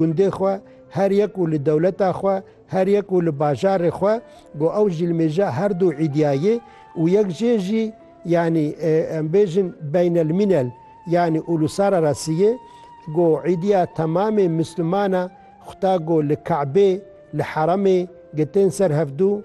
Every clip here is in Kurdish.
gundê xwe, her yek û li dewleta xwe, her yek û li bajarê xwe, got ew jî li mêja her du îdîya yê û yek jê jî yanî em bêjin beynelmînel yanî ûlûsararasî yê. Got îdîya temamê misliman a xuta got li Kabê, li heremê, gitin ser hevdu.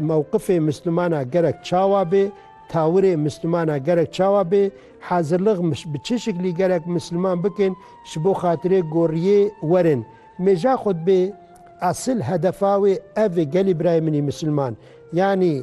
Mewqifê Mislumana gerek çawa bê? Tawirê Mislumana gerek çawa bê? Hazirlig bi çi şiklî gerek Misluman bikin ji bo xatirê goriyê werin? Mêja xwe dibê esil hedefa wê ev ê gelî birayê min î Misluman. Yanî.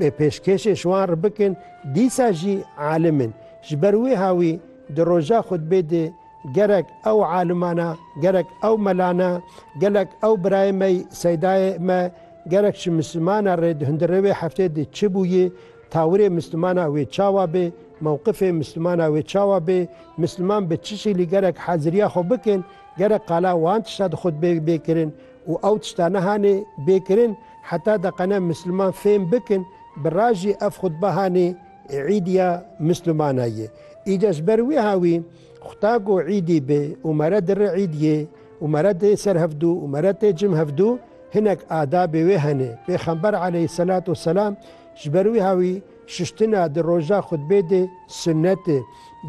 Bê pêşkêşên şiwan re bikin dîsa jî alim in. Ji ber wê hawî di roja xutbê de gerek ew alimana, gerek ew melana, gelek ew birayê me seydayê me, gerek ji mislimana re di hundirê wê heftê de çi bûye, tawirê mislimana wê çawa be, mewqifê mislimana wê çawa be, misliman bi çi şîlî gerek haziriya xwe bikin, gerek qala wan tişta di xutbê bê kirin. Û ew tişta nihanê bê kirin heta deqene misilman fêm bikin bi ra jî ev xutba hanê îd ya misilmana ye. Îde ji ber wîha wî xuta ku îdî bi û mere di ri îd yê û mere tê ser hevdû û mere tê cim hevdû hinek adabê wê hene. Pêxember aleyhîsselat û selam ji ber wîha wî şiştina di roja xutbê de sunnet e.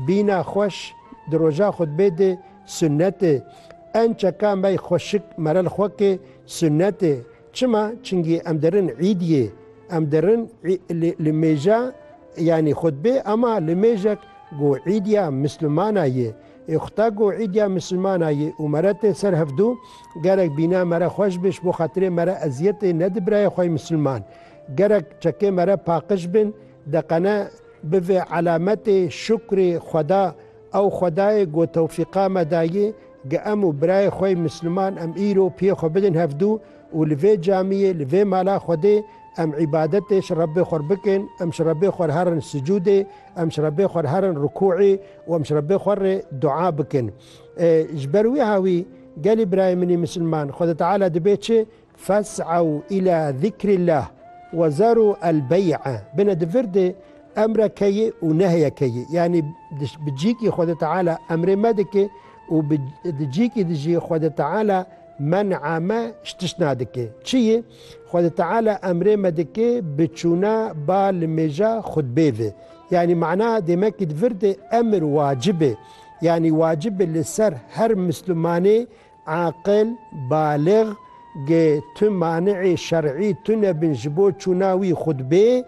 Bîna xweş di roja xutbê de Sunnetê, Ençeka mey xweşik merel xwe ke sunnetê. Çima? Çingî em derin îd yê. Em derin li mêja yanî xutbê ema li mêjek go îd ya misilmana yê. Ê xuta go îd ya misilmana yê û mere tê ser hevdû gerek bîna mere xweş be ji bo xatirê mere eziyetê nedi birayê xwey misilman. Gerek çekê mere paqij bin deqene bi vê elametê şukrê xweda Ew xwedayê ku tewfîqa me dayê ge em û birayê xwey misliman em îro piyê xwe bidin hevdû û li vê camiyê, li vê mala xwedê em îbadetê ji Rebbê xwer bikin, em ji Rebbê xwer herin sicûdê, em ji Rebbê xwer herin rikûî û em ji Rebbê xwer rê dua bikin. Ji ber wî hawî gelê birayê min î misliman, Xweda Teala dibê çi Fes'ew îlâ zikrîllâh we zerû el bey'a, bine di vir de emre ke ye û nehye ke ye, yanî bi cîkî Xwedê Teala emrê me dike û bi di cîkî de jî Xwedê Teala men'a me ji tişt nadike. Çi ye? Xwedê Teala emrê me dike bi çûna ba li mêja xutbê ve. Yanî mana demekî di vir de emir wacib e, yanî wacib e li ser her mislimanê Aqil, balix, ge tu mani'ê şer'î tune bin ji bo çûna wî xutbê,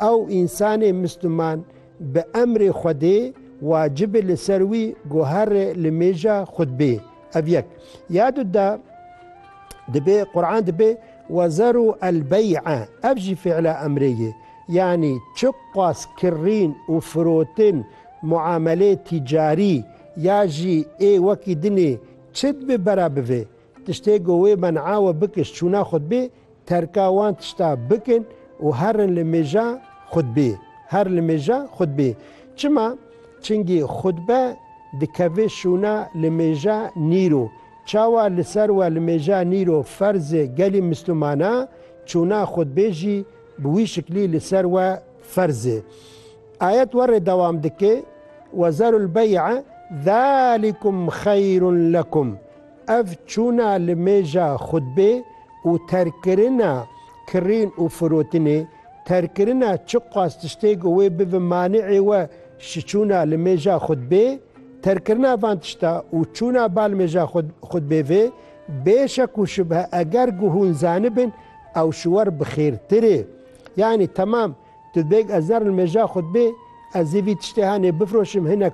ew însanê misliman bi emrê Xwedê wacib e li ser wî guhere li mêja xutbê. Ev yek. Ya du de dibê Quran dibê Wezeru el bey'a ev jî fî'la emrê ye. Yanî çiqas kirîn û firotin, muameleyê tîcarî, Ya jî ê wekî dinê çi dibe bera bivê tiştê ku wê men'a we bikiş çûna xutbê terka wan tişta bikin û herin li mêja xutbê her li mêja xutbê çima çingî xutbe dikeve şûna li mêja nîro çawa li ser we li mêja nîro ferz e gelî mislumana çûna xutbê jî bi wî şiklî li ser we ferz e. Ayet warê dewam dike, Ve zerul bey'a zalikum xeyrun lekum, ev çûna li mêja xutbê û terkirina kirîn û firotinê, terkirina çiqas tiştê ku wê bibe mani'ê we ji çûna li mêja xutbê, terkirina van tişta û çûna bal mêja xutbê vê, bê şek û şubhe eger ku hûn zanibin ew ji wer bi xêrtir e. Yanî temam. Tu bêg ez ne nimêja xwe dibê, ez ê vî tiştê hanê bifroşim hinek